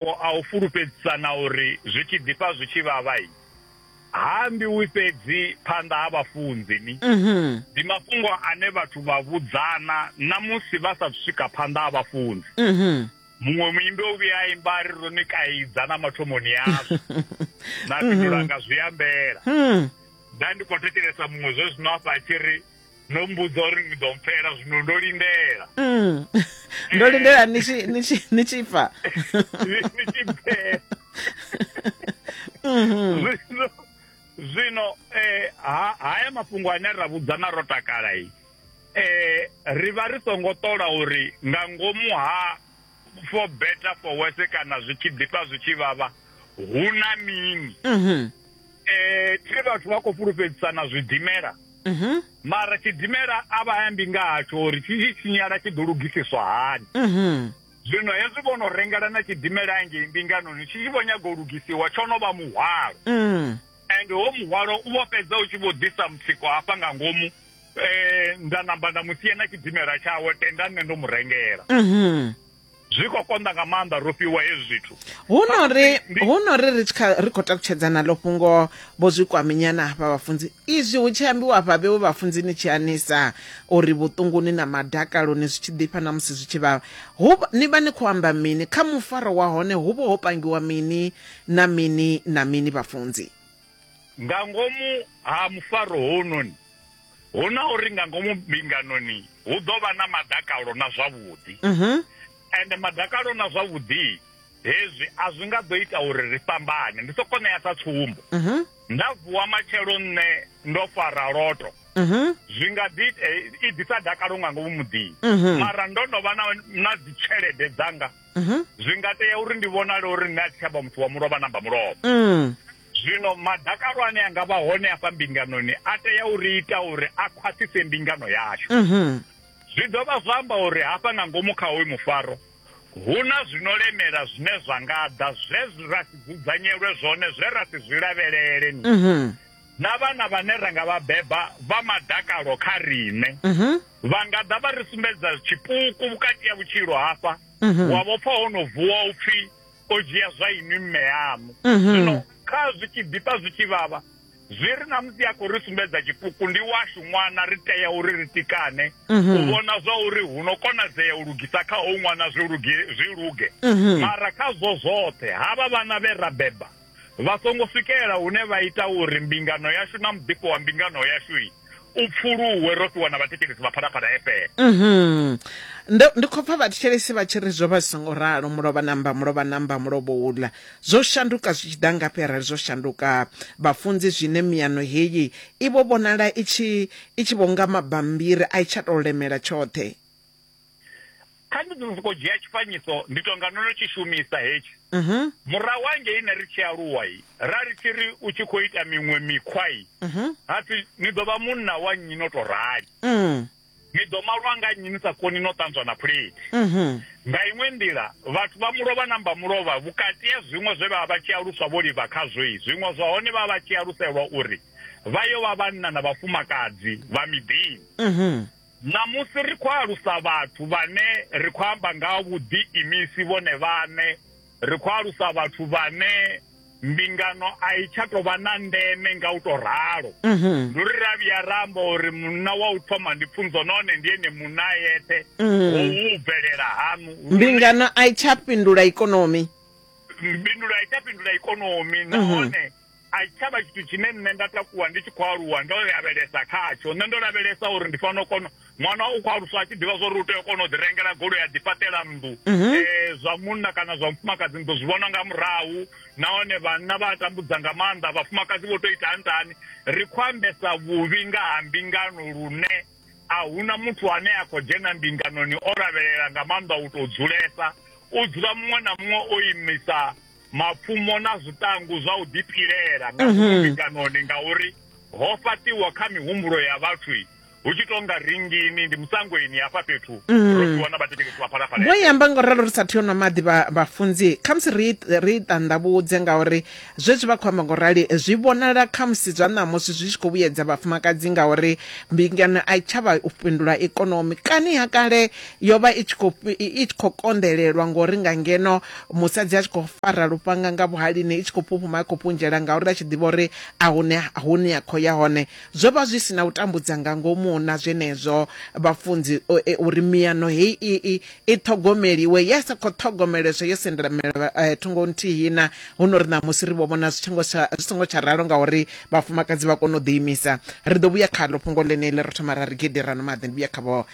mafhungo a u fulufhedzisana uri zwi tshi ḓifha zwi tshi vhavha ha ambiwi fhedzi phanḓa ha vhafunzi ni mhm. ndi mafhungo ane vhathu vha vhudzana na musi vha sa swika phanḓa ha vhafunzi mhm. muṅwe muimbi o vhuya a imba a ri ro ni kaidza na mathomoni yazwo na fhindulanga mhm. zwi ambela hmm. nda ndi khou thetshelesa muṅwe zwe zwino afha a tshi ri no mmbudza uri ni ḓo mpfela zwino ndo lindela mm. ndo lindela ni tshi ni tshi ni tshi fa ni ni tshi pfela Mhm. zwino zwino eh ha- haya mafhungo ane ra vhudzana ro takala i eh ri vha ri songo ṱola uri nga ngomu ha for better for worse kana zwi tshi ḓifha zwi tshi vhavha hu na mini um thi vhathu vha khou fhulufhedzisana zwidimela mhm. mara tshidimela a vha ambi nga hatsho uri tshi tshi tshinyala tshi ḓo lugisiswa hani mhm. zwino hezwi vho no rengela na tshidimela engei mbinganoni tshi tshi vho nyaga u lugisiwa tsho no vha muhwalo mm. and ho muhwalo u vho fhedza u tshi vho ḓisa mutsiko hafha nga ngomu eh, nda namba nda mu sia na tshidimela tshawe tenda nṋe ndo mu rengela Mhm. zwi khou konḓa nga maanḓa ro fhiwa hezwi zwithu hu no ri Ndi- hu no ri ri tshi kha- ri khou takutshedzana ḽo fhungo vho zwi kwaminyana hafha vhafunzi izwi hu tshi ambiwa hafha vhewe vhafunzi ni tshi anisa uri vhuṱunguni na madakaloni zwi tshi ḓifha na musi zwi tshi vhavha hu vha- ni vha ni khou amba mini kha mufaro wa hone hu vha ho pangiwa mini na mini na mini vhafunzi nga ngomu ha mufaro hounoni hu na uri nga ngomu mbinganoni hu ḓo vha na madakalo na zwavhuḓi mhm. ende madakalo na zwavhuḓi hezwi a zwi nga ḓo ita uri ri fhambane ndi soko ṋea sa tsumbo mhm. nda vuwa matshelo nṋe ndo fara loto mhm. zwi nga ḓi eh, i ḓisa dakalo nga ngomu muḓini mara ndo no vha na dzitshelede dzanga mhm. zwi nga tea uri ndi vhonale uri nṋe a thi tshavha muthu wa mulovha namba mulovha mm. zwino madakalo ane a nga vha hone afha mbinganoni a tea uri ita uri a khwaṱhise mbingano yashu mhm. zwi dovha zwa amba uri hafha nga ngomu kha hoyu mufaro hu na zwino lemela zwine zwa nga ḓa zwe ra si dzudzanyelwe zwone zwe ra si zwi lavhelele ni mhm. na vhana vhane ra nga vha beba vha madakalo kha riṋe vha nga ḓa vha ri sumbedza tshipuku vhukati ya vhutshilo hafha mhm. wa vhopfa ho no vuwa u pfhi o dzhia zwa inwi mme yamu mhm. zwino kha zwi tshi ḓifha zwi tshi vhavha zwi ri na musi a khou ri sumbedza tshipuku ndi washu ṅwana ri tea uri ri tikane mhm. u vhona zwa uri hu no konadzea u lugisa kha ho ṅwana zwi luge zwi luge mara kha zwo zwoṱhe havha vhana vhe ra beba vha songo swikelela hune vha ita uri mbingano yashu na muḓifho wa mbingano yashu u pfuluwe ro fhiwa na vhathetshelesi vha phalaphala efele mhm. ndi khou pfa vhathetshelesi vha tshi ri zwo vha zwi songo ralo mulovha namba mulovha namba mulovha uḽa zwo shanduka zwi tshi ḓa ngafhi arali zwo shanduka vhafunzi zwine miyano heyi i vho vhonala i tshi vho nga mabambiri a i tsha tou lemela tshoṱhe kha ndi ḓo sokou dzhia tshifanyiso ndi tou nga no no tshi shumisa hetshi mhm. murahu hangei ne ri tshi aluwa i ra ri tshi ri u tshi khou ita miṅwe mikhwa i mhm. ha pfi ni ḓo vha munna wa nnyi no tou rali mm. ni ḓo malwa nga nnyi ni sa koni no ṱanzwa na phulethi mhm. nga iṅwe nḓila vhathu vha mulovha na mba mulovha vhukati ya zwiṅwe zwe vha vha vha tshi aluswa vho livha khazwo i zwiṅwe zwa hone vha vha tshi aluselwa uri vha yo vha vhanna na vhafumakadzi vha miḓini Ṋamusi ri khou alusa vhathu vhane ri khou amba nga ha vhuḓiimisi vhone vhaṋe. Ri khou alusa vhathu vhane mbingano a i tsha tou vha na ndeme nga u tou ralo. Mhm. Ndi uri ra vhuya ra amba uri munna wa u thoma ndi pfunzo nahone ndi ene munna a yeṱhe Mhm. howu u bvelela haṋu. Lune Mbingano a i tsha fhindula ikonomi. mbindulo a i tsha fhindula ikonomi Mhm. nahone a tshi tshavha tshithu tshine nṋe nda takuwa ndi tshi khou aluwa ndo lavhelesa khatsho nṋe ndo lavhelesa uri ndi fanela u kona ṅwana u khou aluswa a tshi ḓivha zwa uri u tea u kona u ḓi rengela goloi a ḓifhaṱela nnḓu um mhm. eh, zwa munna kana zwa mufumakadzi ni ḓo zwi vhona nga murahu nahone vhanna vha tambudza nga maanḓa vhafumakadzi vho tou ita ntani ri khou ambesa vhuvhi nga ha mbingano lune a huna muthu ane a khou dzhena mbinganoni o lavhelela nga maanḓa u tou dzulesa u dzula muṅwe na muṅwe o imisa mapfumo na zwiṱangu zwa u ḓipilela nga mhm. ngomu mbinganoni ngauri ho fhaṱiwa kha mihumbulo ya vhathu hu tshi tonga ringini ndi musangweni hafha fhethu mhm. ro ḓiwana vhathetshelesi vha phalaphala vho yamba ngo ralo ri sa thiyo nwa maḓi vhafunzi khamusi ri ri ṱanḓavhudze ngauri zwezwi vha khou amba ngo rali zwi vhonala khamusi zwa ṋamusi zwi tshi khou vhuyedza vhafumakadzi ngauri mbingano a i tshavha u fhindula ikonomi kani ha kale Yo vha i tshi khou i tshi khou konḓelelwa ngori nga ngeno musadzi a tshi khou fara lufhanga nga vhuhalini i tshi khou phuphuma i khou punzhela ngauri a tshi ḓivha uri a hune hune ya khou ya hone zwo vha zwi si na u tambudza nga ngomu na zwenezwo vhafunzi uri miano heyi i i i ṱhogomeliwe ya sa khou ṱhogomeleswa yo sendelamela thungo nthihi na huno ri ṋamusi ri vho vhona zwi tshingo tsha zwi songo tsha ralo ngauri vhafumakadzi vha kona u ḓiimisa ri ḓo vhuya khaḽo fhungo ḽeneḽi ro thoma ra ri gidi ra no maḓi ndi vhuya khavho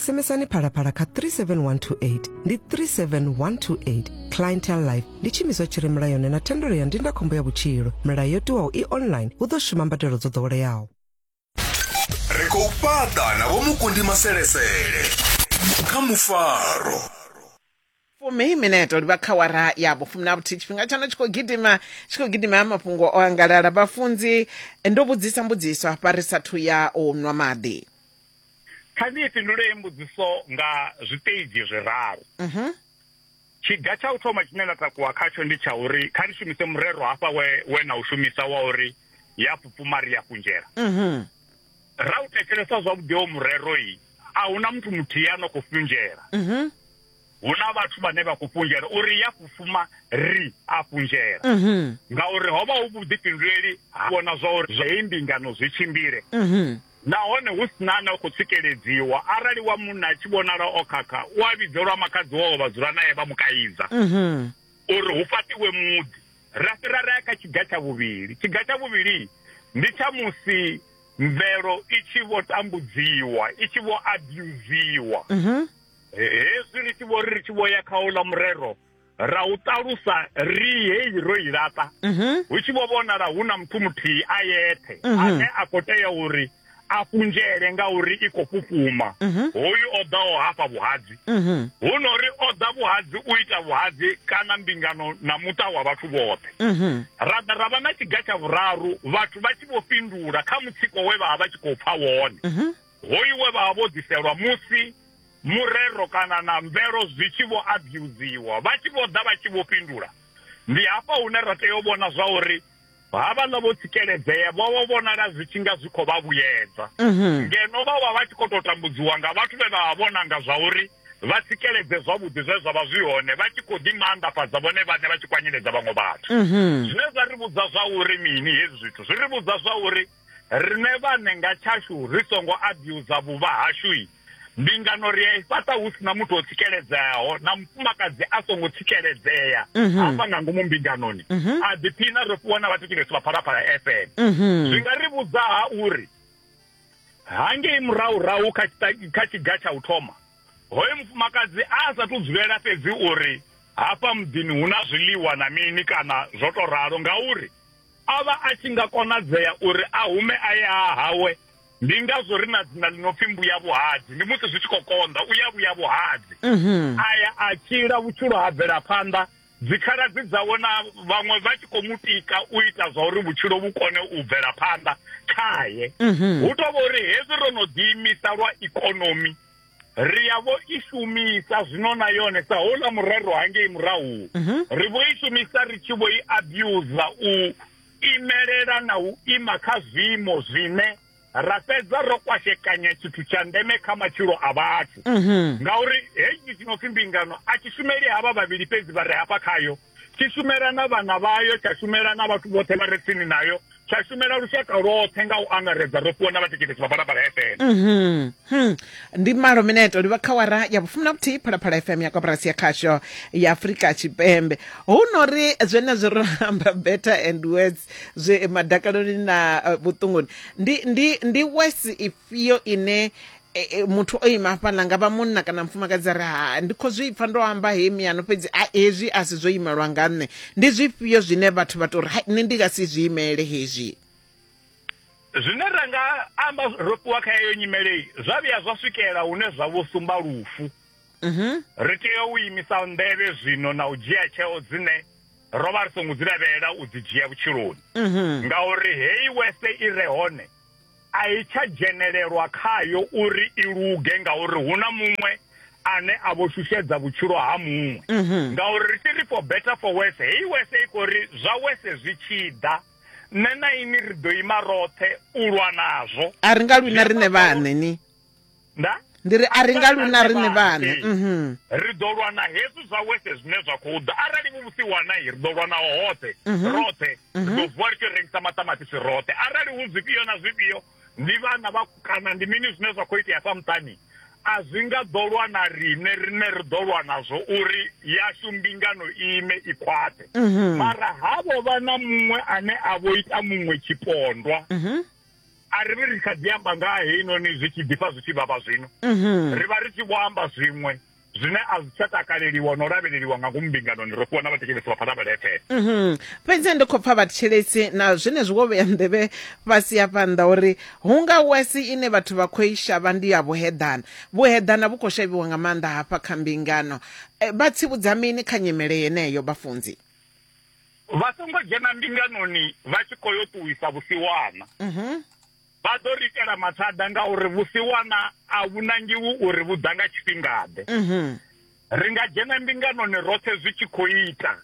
SMSani phalaphala kha 37128 ndi 37128 clientele life ndi tshiimiswa tshi re mulayoni na thendelo ya ndindakhombo ya vhutshilo milayo yo tiwaho i online hu ḓo shuma mbadelo dzo ḓoweleaho ri khou fhaṱa na vhomukundi maselesele kha mufaro fumi mineto livha khawara ya vhufumi na vhuthihi tshifhinga tshaṋo tshi khou gidima tshi khou gidima mafhungo o angalala vhafunzi ndo vhudzisa mbudziso hafha ri sathu ya u nwa maḓi kha ndi fhindule mbudziso nga zwiṱeji zwiraru mhm. tshiga tsha u thoma tshine nda takuwa khatsho ndi tsha uri kha ri shumise murero hafha we we na u shumisa wa uri ya pfupfuma ri ya kunzhela mhm. ra u thetshelesa zwavhuḓi o mureroi a huna muthu muthihi a no khou funzhela mhm. hu na vhathu vhane vha khou funzhela uri ya fufuma ri a funzhela mhm. ngauri ho vha hu vhuḓifhinduleli ha vhona zwa uri zwei mbingano zwi tshimbile mhm. nahone hu sina na khou tsikeledziwa arali wa munna a tshi vhonala o khakha u a vhidzelwa makhadzi wao vha dzula naye vha mu kaidza uri hu fatiwe muḓi ra fhira ra ya kha tshiga tsha vhuvhili tshiga tsha vhuvhili ndi tsha musi mvelo i tshi vho tambudziwa i tshi vho abuziwa mhm. hezwi ri tshi vho ri ri tshi vho ya kha uḽa murero ra u ṱalusa ri heyi ro i laṱa mhm. hu tshi vho vhonala hu na muthu muthihi a yethe mhm. ane a khou tea uri a fhunzhele ngauri i khou fhufhuma mhm. hoyu o ḓaho hafha vhuhadzi mhm. hu no ri o ḓa vhuhadzi u ita vhuhadzi kana mbingano na muṱa wa vhathu vhoṱhe mhm. ra ḓa ra vha na tshiga tsha vhuraru vhathu vha tshi vho fhindula kha mutsiko we vha vha vha tshi khou pfa wone hoyu we vha vha vho ḓiselwa musi murero kana na mvelo zwi tshi vho abuziwa vha tshi vho ḓa vha tshi vho fhindula ndi hafha hune ra tea u vhona zwa uri havhaḽa vho tsikeledzea vho vho vhonala zwi tshi nga zwi khou vha vhuyedza mhm. ngeno vha vha vha tshi khou tou tambudziwa nga vhathu vhe vha vha vhona nga zwa uri vha tsikeledze zwavhuḓi zwe zwa vha zwi hone vha tshi khou ḓi maanḓafhadza vhone vhaṋe vha tshi kwanyeledza vhaṅwe vhathu mhm. zwine zwa ri vhudza zwa uri mini hezwi zwithu zwi ri vhudza zwa uri Riṋe vhaṋe nga tshashu ri songo abuser vhuvha hashu, mbingano ri a i fhaṱa hu si na muthu o tsikeledzeaho na mufumakadzi a songo tsikeledzea mhm. hafha nga ngomu mbinganoni. Mhm. A ḓiphina ro fhiwa na vhathetshelesi vha Phalaphala FM. Mhm. Zwi nga ri vhudza ha uri hangei murahurahu kha kha tshiga tsha u thoma hoyo mufumakadzi a sa tu dzulela fhedzi uri hafha muḓini hu na zwiḽiwa na mini kana zwo to ralo ngauri O vha a tshi nga konadzea uri a hume a ye ha hawe. Ndi ngazwo ri na dzina ḽi no pfi Mbuyavhuhadzi. Ndi musi zwi tshi khou konḓa, u ya vhuya vhuhadzi. Mhm. A ya a tshila, vhutshilo ha bvela phanḓa, dzikhaladzi dzawe na vhaṅwe vha tshi khou mu tika u ita zwa uri vhutshilo vhu kone u bvela phanḓa khae. Mhm. Hu tou vha uri hezwi ro no ḓiimisa lwa ikonomi, ri ya vho i shumisa zwino na yone sa houḽa murero hangei murahu mhm. ri vho i shumisa ri tshi vho i abusa u imelela na u ima kha zwiimo zwine ra fhedza ro kwashekanya tshithu tsha ndeme kha matshilo a vhathu mhm. ngauri heyi tshi no pfi mbingano a tshi shumeli havha vhavhili fhedzi vha re hafha khayo tshi shumela na vhana vhayo tsha shumela na vhathu vhoṱhe vha re tsini nayo tsha shumela lushaka lwoṱhe nga u angaredza ro fhiwa na vhatheketesi vha balapala fm mhm. hmm. ndi malo mineto livha kha wara ya vhufumi na vhuthihi phalaphala fm ya koporasi ya khasho ya afurika tshipembe hu no ri zwenezwo ro amba better and words zwe madakaloni na eh, vhuṱunguni ndi ndi ndi wes fhio ine e, e, muthu o ima hafhaḽa nga vha munna kana mufumakadzi a ri ha ndi khou zwi pfa ndo amba he miyano fhedzi a hezwi a si zwo imelwa nga nṋe ndi zwifhio zwine vhathu vha tou ri hai nṋe ndi nga si zwi imele hezwi zwine ra nga amba ro fhiwa kha yeyo nyimelei zwa vhuya zwa swikela hune zwa vho sumba lufu mhm. ri tea u imisa nḓevhe zwino na u dzhia tsheo dzine ro vha ri songo dzi lavhelela u dzi dzhia vhutshiloni mhm. ngauri heyi wese i re hone a i tsha dzhenelelwa khayo uri i luge ngauri hu na muṅwe ane a vho shushedza vhutshilo ha muṅwe mhm. ngauri ri tshi ri for better for worse heyi wese i khou ri zwa wese zwi tshi ḓa nṋe na ini ri ḓo ima roṱhe u lwa nazwo a ri nga lwina riṋe vhaṋe ni nda ndi ri a ri nga luna riṋe vhaṋe mhm. ri ḓo lwa na hezwi zwa wese zwine zwa khou ḓa arali muvhusi wa nai ri ḓo lwa naho hoṱhe mhm. roṱhe ri mhm. ḓo vuwa ri tshi rengisa maṱamaṱisi roṱhe arali hu zwifhio na zwifhio ndi vhana vha kana ndi mini zwine zwa khou itea sa muṱani a zwi nga ḓo lwa na riṋe riṋe ri ḓo lwa nazwo uri yashu mbingano ime i khwaṱhe mara havho vha na muṅwe ane a vho ita muṅwe tshipondwa a ri vhi ri kha ḓi amba nga ha heinoni zwi tshi ḓifha zwi tshi vhavha zwino mhm. ri vha ri tshi vho amba zwiṅwe zwine a zwi tsha takaleliwa no lavheleliwa nga ngomu mbinganoni ro fhiwa na vhathetshelesi vha phanḓa vhaletshele mhm. fhedzi ndi khou pfa vhathetshelesi na zwine zwi vho vhea nḓevhe fhasi ya phanḓa uri hu nga wesi ine vhathu vha khou i shavha ndi ya vhuheḓana vhuheḓana vhu khou shavhiwa nga maanḓa hafha kha mbingano eh, vha tsivhudza mini kha nyimele yeneyo vhafunzi vha songo dzhena mbinganoni vha tshi khou yo ṱuwisa vhusiwana mhm. vha ḓo ri itela mathada ngauri vhusiwana a vhu nangiwi uri vhu ḓa nga tshifhingaḓe mhm. ri nga dzhena mbinganoni roṱhe zwi tshi khou ita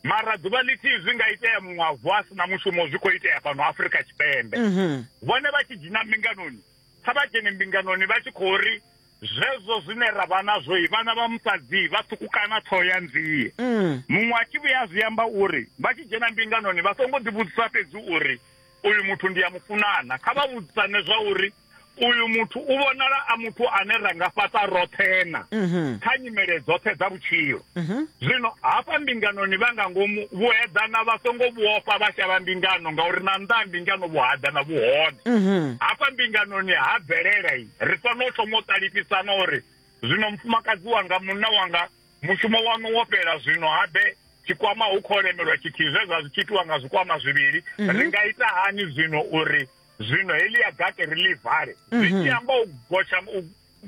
mara ḓuvha ḽithihi zwi nga itea muṅwe a vuwa a si na mushumo zwi khou itea fhano afurika tshipembe mhm. vhone vha tshi dzhena mbinganoni kha vha dzhene mbinganoni vha tshi khou ri zwezwo zwine ra vha nazwo vhana vha musadzi vha ṱhukukana ṱhoho ya nzie mm. muṅwe a tshi vhuya zwi amba uri vha tshi dzhena mbinganoni vha songo ḓivhudzisa fhedzi uri uyu muthu ndi ya mufunana kha vha vhudzisane zwa uri uyu muthu u vhonala a muthu ane ra nga fhaṱa roṱhena mhm. kha nyimele dzoṱhe dza vhutshilo mhm. zwino hafha mbinganoni vha nga ngomu vhueḓana vha songo vhuofha vha shavha mbingano ngauri na nnḓa ha mbingano vhuhaḓana vhuhone mhm. hafha mbinganoni ha bvelela i ri fanela u thoma u ṱalifhisana uri zwino mufumakadzi wanga munna wanga mushumo waṋu wo fhela zwino habe tshikwama hu khou lemelwa tshithihi zwe zwa zwi tshi itiwa nga zwikwama zwivhili mhm. ri nga ita hani zwino uri zwino heḽi ya gake ri ḽi vale mhm. zwi tshi amba u gotsha u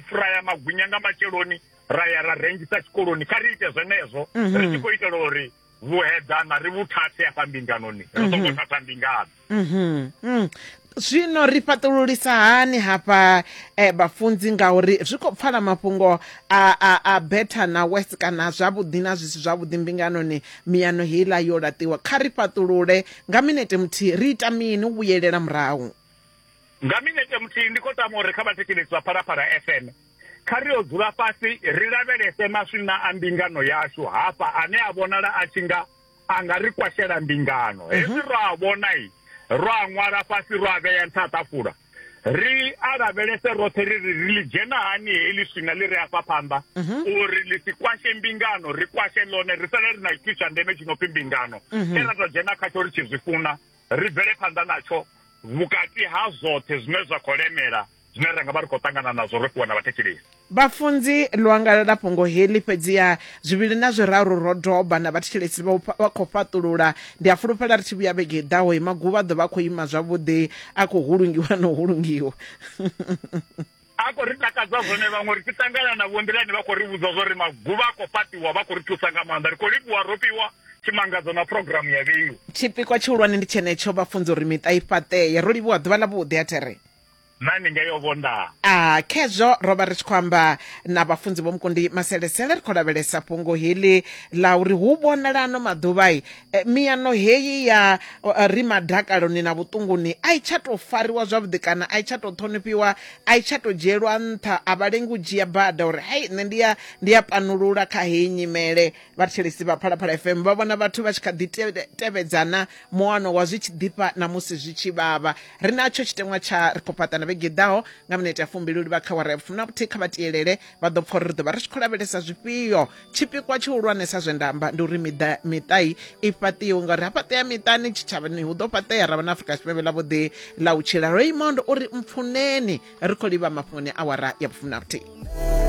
furaya magwinya nga matsheloni ra ya ra rengisa tshikoloni kha ri ite zwenezwo mhm. ri tshi khou itela uri mm -hmm. vhuhedana ri vhu thathe afha mbinganoni ri songo mhm. thatha mbingano mhm. mm. zwino ri fhaṱululisa hani hafha eh, vhafunzi ngauri zwi khou pfala mafhungo a, a, a better na west kana zwavhuḓi na zwi si zwavhuḓi mbinganoni miyano heiḽa yo laṱiwa kha ri fhaṱulule nga minete muthihi ri ita mini u vhuyelela murahu nga minete muthihi ndi khou tama uri kha vhathetshelesi vha phalaphala fm Kha ri yo dzula fhasi ri lavhelese maswina a mbingano yashu hafha ane a vhonala a tshi nga a nga ri kwashela mbingano. Mhm. Hezwi ro a vhona i ro a ṅwala fhasi ro a vhea nṱha ṱafula. Ri a lavhelese roṱhe ri ri ri ḽi dzhena hani heḽi swina ḽi re afha phanḓa mhm. uri ḽi si kwashe mbingano ri kwashe ḽone ri sale ri na tshithu tsha ndeme tshi no pfi mbingano. Mhm. Tshe ra tou dzhena khatsho ri tshi zwi funa ri bvele phanḓa natsho vhukati ha zwoṱhe zwine zwa khou lemela zwine ra nga vha ri khou ṱangana nazwo ro fhiwa na vhathetshelesi vhafunzi ḽo angalela fhungo heḽi fhedziha zwivhili na zwiraru ro doba na vhathetshelesi vha khou fhaṱulula ndi a fulufhela ri tshi vhuya vhege i ḓaho imaguvha ḓo vha a khou ima zwavhuḓi a khou hulungiwa na u hulungiwa a khou ri takadza zwone vhaṅwe ri tshi ṱangana na vhonḓilani vha khou ri vhudza zwo ri maguvha a khou fhaṱiwa vha khou ri thusa nga maanḓa ri khou livhuwa ro fhiwa tshimangadzo na programu ya vheiwa tshipikwa tshihulwane ndi tshenetsho vhafunzi uri miṱa i fhaṱee ro livhuwa ḓuvha ḽa vhuḓi a there na ni ngeyo vhondaa a khezwo ro vha ri tshi khou amba na vhafunzi vho mukundi maselesele ri khou lavhelesa fhungo heḽi ḽa uri hu vhonala ano maḓuvha-i eh, miano heyi ya eh, ri madakaloni na vhuṱunguni a i tsha tou fariwa zwavhuḓi kana a i tsha tou ṱhonifhiwa a i tsha tou dzhielwa nṱha a vha lengi u dzhia bada uri hai nṋe ndi ya ndi ya panulula kha heyi nyimele vhathetshelesi vha phalaphala fm vha vhona vhathu vha tshi kha ḓi te- tevhedzana muano wa zwi tshi ḓifha na musi zwi tshi vhavha ri natsho tshiteṅwa tsha ri khou fhaṱa na vhege i ḓaho nga minete ya fumbili u livha kha wara ya vhufumi na vhuthihi kha vha tielele vha ḓo pfa uri ri ḓo vha ri tshi khou lavhelesa zwifhio tshipikwa tshihulwanesa zwe nda amba ndi uri miḓa miṱai i fhaṱiwe ngauri ha fhaṱea miṱani tshitshavhani hu ḓo fhaṱea ra vha na afrika tshipembe ḽa vhuḓi ḽa u tshila raymond uri mpfuneni ri khou livha mafhungoni awara ya vhufumi na vhuthihi